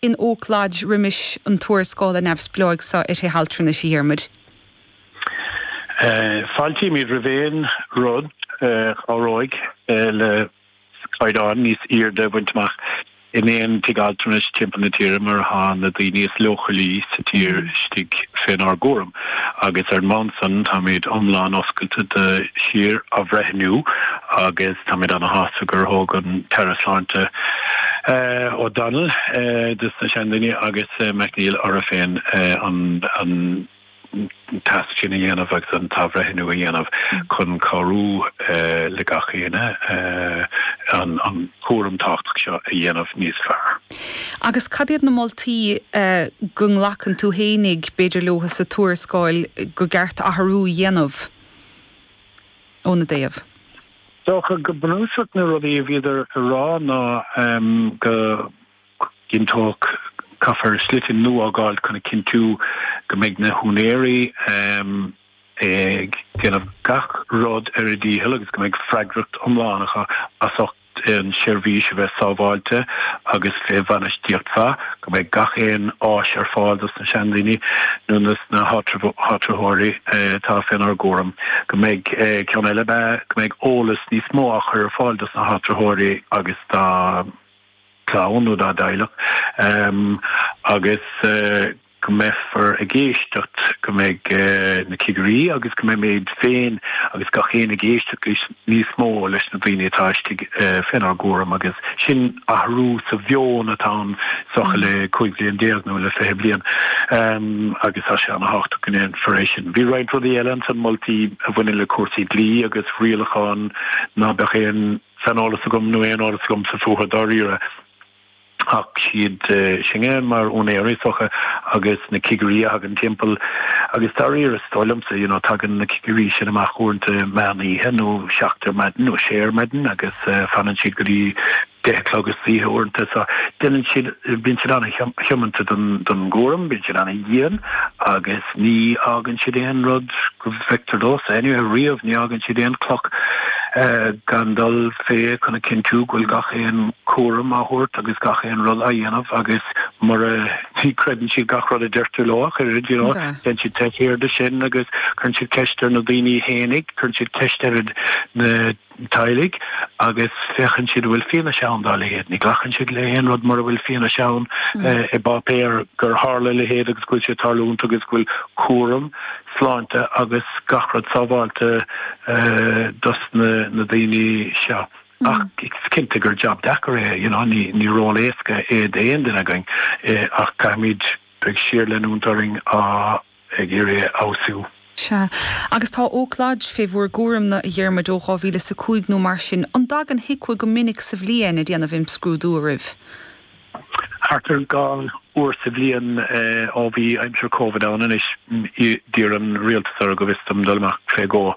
In Oak Lodge roimis an tuarascála neamhspleáigh seo ar thithe altranais, a Dhiarmuid. Fáiltímid roimh aon rud a chabhróidh le caighdeán níos airde a bhaint amach in aon tigh altranais timpeall na tíre mar atá na daoine is leochailí sa tír istigh fénár gcúram. agus ar an mbonn san táimid iomlán oscailte do shíor-athbhreithniú agus táimid ana-shásta gur thóg an tAire Sláinte O'Donnell, dos na seandaoine, agus McNeill orthu féin an tasc sin a dhéanamh agus an t-athbhreithniú a dhéanamh chun cabhrú le gach éinne an cúram tábhachtach seo a dhéanamh níos fearr. Agus cad iad na moltaí go nglacann tú fhéinig, b'fhéidir, leo sa tuarascáil gur ceart athrú a dhéanamh ina dtaobh? Is dócha go bunúsach na rudaí a bhíodar a rá ná go gcinnteofaí caithfear slite nua a fhágáil chun a chinntiú go mbeidh na húinéirí ag déanamh gach rud ar a ndícheall agus go mbeidh freagracht iomlán acu as ucht an tseirbhís a bheith sábháilte agus fé bhainistíocht mhaith, go mbeidh gach aon áis ar fáil dos na seandaoine nó dos na háitritheoirí atá fé n-ár gcúram, go mbeidh, ceann eile ab ea, go mbeidh eolas níos mó á chur ar fáil dos na háitritheoirí agus dá gclann nó dá dteaghlach, agus. go mbeifear ag éisteacht, go mbeidh na cigirí agus go mbeimid féin agus gach éinne ag éisteacht níos mó leis na daoine atá istigh fénár gcúram agus sin athrú sa mheon atá ann is dócha le 15 bliain nó le 20 bliain agus tá sé an-thábhachtach go ndéanfar é sin. Bhí roinnt rudaí eile ansan, moltaí a bhaineann le cúrsaí dlí agus rialacháin ná beadh aon saineolas agam nó aon eolas agamsa fúthu dáiríre. Ach is iad sinne mar úinéirí is dócha agus na cigirí a thagann timpeall agus dáiríre is dóigh liomsa you know tagann na cigirí sin amach uaireanta meán oíche nó seacht ar maidin nó sé ar maidin agus fanann siad go dtí deich a chlog is oíche uaireanta so déanann siad bíonn siad an-tiomanta don gcúram bíonn siad an-dhian agus Ní fhágann siad aon rud go bhfeictear domhsa anyway, riamh, ní fhágann siad aon chloch gan dul fé chun a chinntiú go bhfuil gach aon chúram á thabhairt agus gach aon rud á dhéanamh agus ní chreideann siad gach rud a deirtear leo ach oiread, you know, déanann siad teist ar sin agus cuireann siad ceist ar na daoine fhéinig, cuireann siad ceist ar na teaghlaigh agus féachann siad an bhfuil fianaise ann dá leithéid. Ní glacann siad le haon rud mura bhfuil fianaise ann i bpáipéar gur tharla a leithéid agus go bhfuil sé ag tarlúint agus go bhfuil cúram sláinte agus gach rud sábháilte dos na daoine seo. Ach is cinnte gur jab deacair é, you know, ní ní ról éasca é d'aon duine againn ach caithfimid bheith ag síorleanúint orainn ag iarraidh a fheabhsú. Sea. Agus tá ócáid fé bhur gcúram-na, a Dhiarmuid, ó dhá mhíle 's a cúig nó mar sin. An dtagann HIQA go minic sa bhliain a' déanamh imscrúdú oraibh? Thart ar dhá uair sa bhliain, ó bhí aimsir Covid ann. Anois, d'iarr an rialtas orthu, go bhfios dom, dul amach fé dhó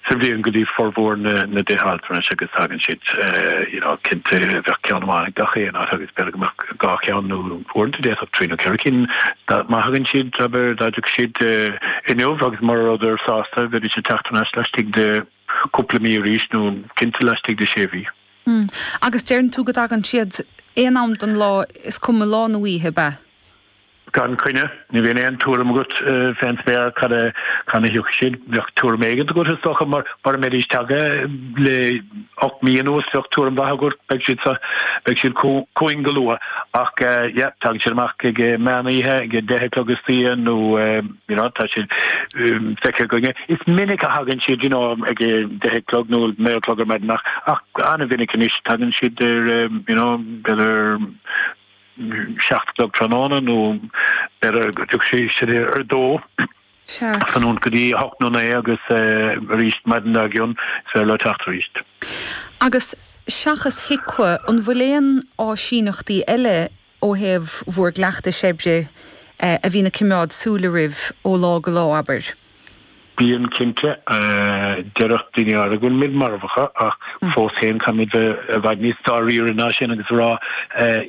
sa bhliain go dtí formhór na dtithe altranais agus thagann siad, you know, cinnte bheadh ceann amháin ag gach aon áit agus b'fhéidir go mbeadh dhá cheann nó, uaireanta d'fhéadfadh trí nó ceithre cinn má thagann siad abair dá dtiocfadh siad inniu agus mura rabhadar sásta bheidís ag teacht aneas laistigh de chúpla mí arís nó cinnte laistigh de sé mhí. Hm. Agus deireann tú go dtagann siad aon am den lá is cuma lá nó oíche, ab ea? Gan choinne. Ní bhíonn aon tuairim agat fén spéir cathain a thiocfaidh siad. Bheadh tuairim éigint agat is dócha mar mura mbeidís tagtha le hocht mí anuas bheadh tuairim mhaith agat, beidh siad sa, beidh siad chugainn go luath. Ach yeah, tagann siad amach ag meán oíche, ag a deich a chlog istoíche nó you know, tá siad feicthe againne. Is minic a thagann siad you know, ag a deich a chlog nó naoi a chlog ar maidin ach an-mhinic anois tagann siad ar you know, b'fhéidir seacht a chlog tráthnóna nó ar a dtiocfadh sé isteach ar a dó san iarnóin go dtí a hocht nó a naoi agus arís maidin dár gcionn is féidir leo teacht arís. Agus seachas HIQA, an bhfuil aon áisíneachtaí eile ó thaobh bhur gcleachtais oibre a bhíonn ag coimeád súil oraibh ó lá go lá, abair? Bíonn, cinnte. Déarfadh daoine áirithe go bhfuil muid marbh acu ach fós féin caithfimid bheith i bhfad níos dáiríre ná sin agus a rá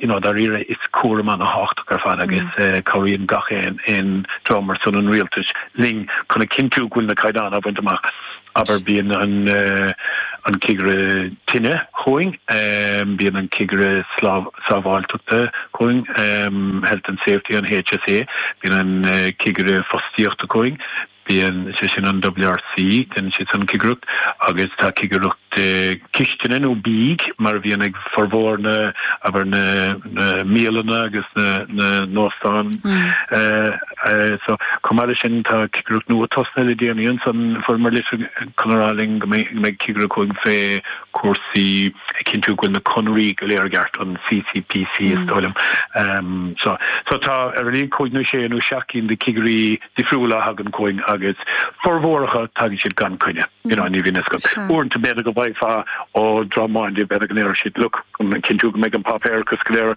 you know dáiríre is cúram an-tábhachtach ar fad agus cabhraíonn gach aon rud mar sin ar son an rialtais linn chun a chinntiú go bhfuil na caighdeáin á bhaint amach. Abair bíonn an cigire tine chugainn, bíonn an cigire Sábháilteachta chugainn, Health and Safety an HSE, bíonn an Cigire Fostaíochta chugainn, bíonn, sé sin an WRC, déanann siad san cigireacht agus tá cigireacht cistine nó bídh mar a bhíonn ag formhór na, abair, na mbialanna agus na n-óstán. So, chomh maith leis sin tá cigireacht nua tosnaithe le déanaí ansan, fuaireamar litir chun a rá linn go mbeidh cigireacht chugainn fé, cúrsaí, ag cinntiú go bhfuil na conarthaí go léir i gceart, an CCPC is dóigh liom. So so tá ar a laghad cúig nó sé nó seacht gcinn de chigirí difriúla a thagann chugainn agus formhór acu tagann siad gan coinne. You know, ní bhíonn fhios agat. Uaireanta b'fhéidir go bhfaighfeá ó Droim Máinde b'fhéidir go ndéarfadh siad look chun cinntiú go mbeidh an páipéarachas go léir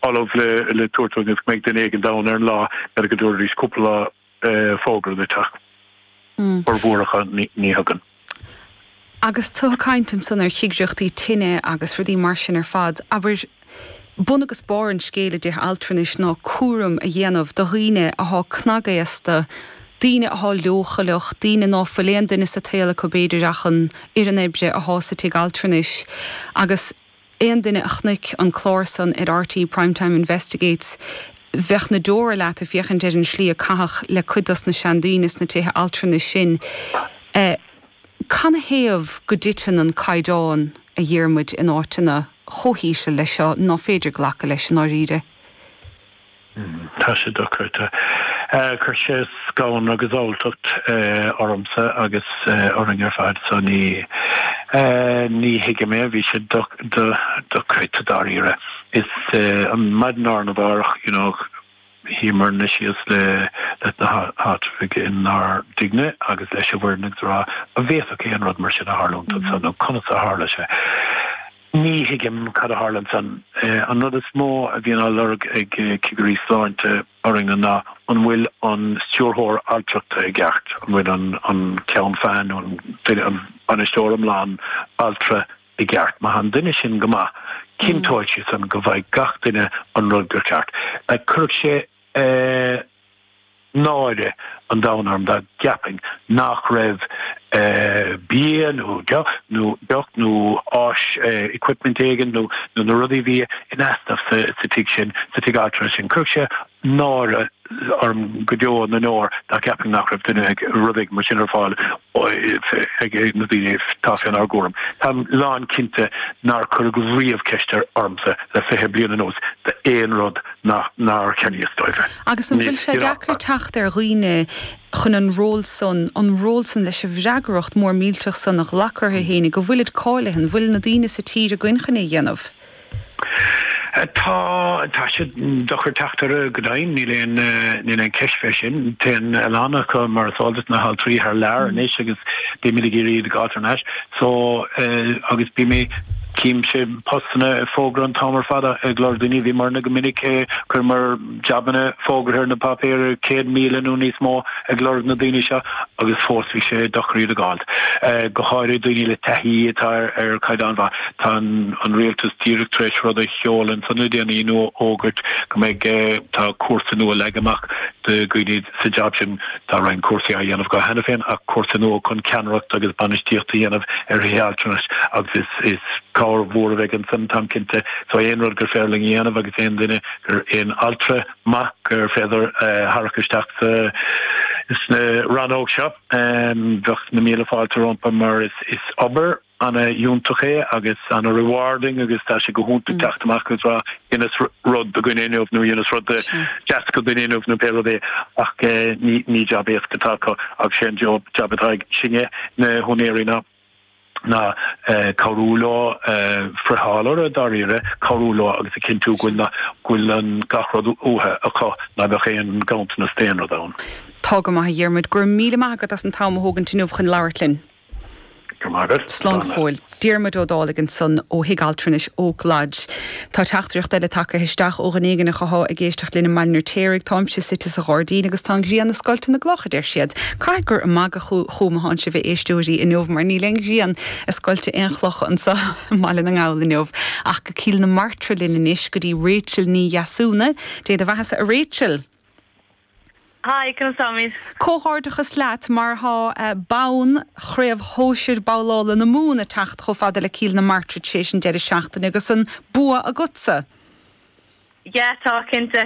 ullamh le le tabhairt dúinn is go mbeidh duine éigin ann ar an lá, b'fhéidir go dtabharfaidís cúpla lá fógra dúinn ach a bhformhór acu ní thugann. Agus tú ag caint ansan ar chigireachtaí tine agus rudaí mar sin ar fad, abair, bun agus barr an scéil i dtithe altranais ná cúram a dhéanamh do dhaoine athá cnagaosta, daoine athá leochaileach, daoine ná fuil aon duine sa tsaol acu b'fhéidir ach an fhoireann oibre athá sa tigh altranais agus. Aon duine a chonaic an clár san ar RTÉ Prime Time Investigates bheadh na deora leat ag féachaint ar an tslí a caitheadh le cuid dos na seandaoine sna tithe altranais sin. Canathaobh go dtiteann an caighdeán, a Dhiarmuid, in áiteanna chomh híseal leis seo? Ná féidir glacadh leis, i ndáiríre? Tá sé dochreidte. Chuir sé scanradh agus alltacht ormsa agus orainn ar fad so ní ní thuigim é. Bhí sé dochreidte dáiríre. Is an maidin arna mhárach you know shuíomarna síos le leis na háitritheoirí inár dtighne agus leis an bhfoireann agus a rá, an bhféadfadh an rud mar sin a tharlúint anso nó conas a tharla sé? Ní thuigim cad a tharla ansan. An rud is mó a bhíonn á lorg ag cigirí sláinte orainne ná an bhfuil an stiúrthóir altrachta i gceart, an bhfuil an ceann feadhna nó an bainisteoir iomlán altra i gceart. Má tá an duine sin go maith, cinnteoidh sé san go bhfaighidh gach duine an rud gur ceart. Cuirfidh sé. náire an domhain orm dá gceapfainn nach raibh bia nó deoch nó deoch nó áis equipment éigin nó nó na rudaí a bhí in easnamh sa sa tigh sin sa tigh altra sin chuirfeadh sé náire orm go deo na ndeor dá gceapfainn nach raibh duine ag rud éigin mar sin ar fáil ag ag na daoine atá fé nár gcúram táim lán cinnte nár cuireadh riamh ceist ar ormsa le fiche bliain anuas d'aon rud nár cheannaíos dóibh é. Agus an bhfuil sé deacair teacht ar dhaoine chun an ról san, an ról san leis an bhfreagracht mhór mhillteach san a ghlacadh orthu fhéinig, go bhfuilid cáilithe, an bhfuil na daoine sa tír againn chun é a dhéanamh? Tá, tá sé deacair teacht orthu go deimhin, níl aon, níl aon cheist fé sin. Téann a lán acu, mar is eol duit, na haltraí thar lear anois agus bímid ag iarraidh iad a fháilt thar n-ais. So eh agus bíonn, chím sé postanna á fógairt an t-am ar fad a ag lorg daoine, bhíomairne go minic eh chuirimid jabanna fógartha ar na páipéir, céad míle nó níos mó ag lorg na daoine seo agus fós bhí sé deacair iad a dh'fháilt. Eh go háirithe daoine le taithí atá ar ar chaighdeán mhaith. Tá an an rialtas díreach tar éis rud a sheoladh ansan le déanaí nó a fhógairt go mbeidh eh tá cúrsa nua leagtha amach do dhaoine sa jab sin. Tá roinnt cúrsaí á dhéanamh acu cheana féin ach cúrsa nua chun ceannaireacht agus bainistíocht a dhéanamh ar thithe altranais agus is cabhair mhór a bheidh ansan, táim cinnte. So aon rud gur féidir linn a dhéanamh agus aon duine, aon altra maith gur féidir a tharrac isteach sa rannóg seo, bheadh na míle fáilte rompu mar is obair. ana fhiúntach é agus ana rewarding agus tá sé go hiontach teacht amach agus rá dheineas rud do dhuine inniu nó dheineas rud deas do dhuine inniu nó pé rud é ach ní ní jab éasca atá acu agus sé an job jab atá ag sinne na húinéirí ná ná cabhrú leo friotháil orthu dáiríre cabhrú leo agus a cinntiú go bhfuil na go bhfuil an gach rud uathu acu ná beadh aon ghanntanas d'aon rud ann. Tá go maith a Dhiarmuid. Go raibh míle maith agat as an t-am a thógaint inniu chun labhairt linn. Slán go fóill. Diarmuid Ó Dálaigh ansan, ó Thigh Altranais Oak Lodge. Tá teachtaireacht eile tagtha isteach ó dhuine éigin acu atá ag éisteacht linn i mBaile an Fheirtéaraigh. Táimse suite sa ghairdín agus tá an ghrian ag scoilteadh na gcloch, a deir siad. Caithfidh gur ag magadh fúm atánn sibh a éisteoirí inniu mar níl aon ghrian ag scoilteadh aon chloch anso i mBaile na nGall inniu. Ach go Cill na Martra linn anois go dtí Rachel Ní Dheasúna. Dé do bheathasa a Rachel. Hi, conas tá? Comhghairdeachas leat mar tá bonn Chraobh Shóisir Babhlála na Mumhan ag teacht chomh fada le Cill na Martra tar éis an deireadh seachtaine agus an bua agatsa! Yeah tá cinnte.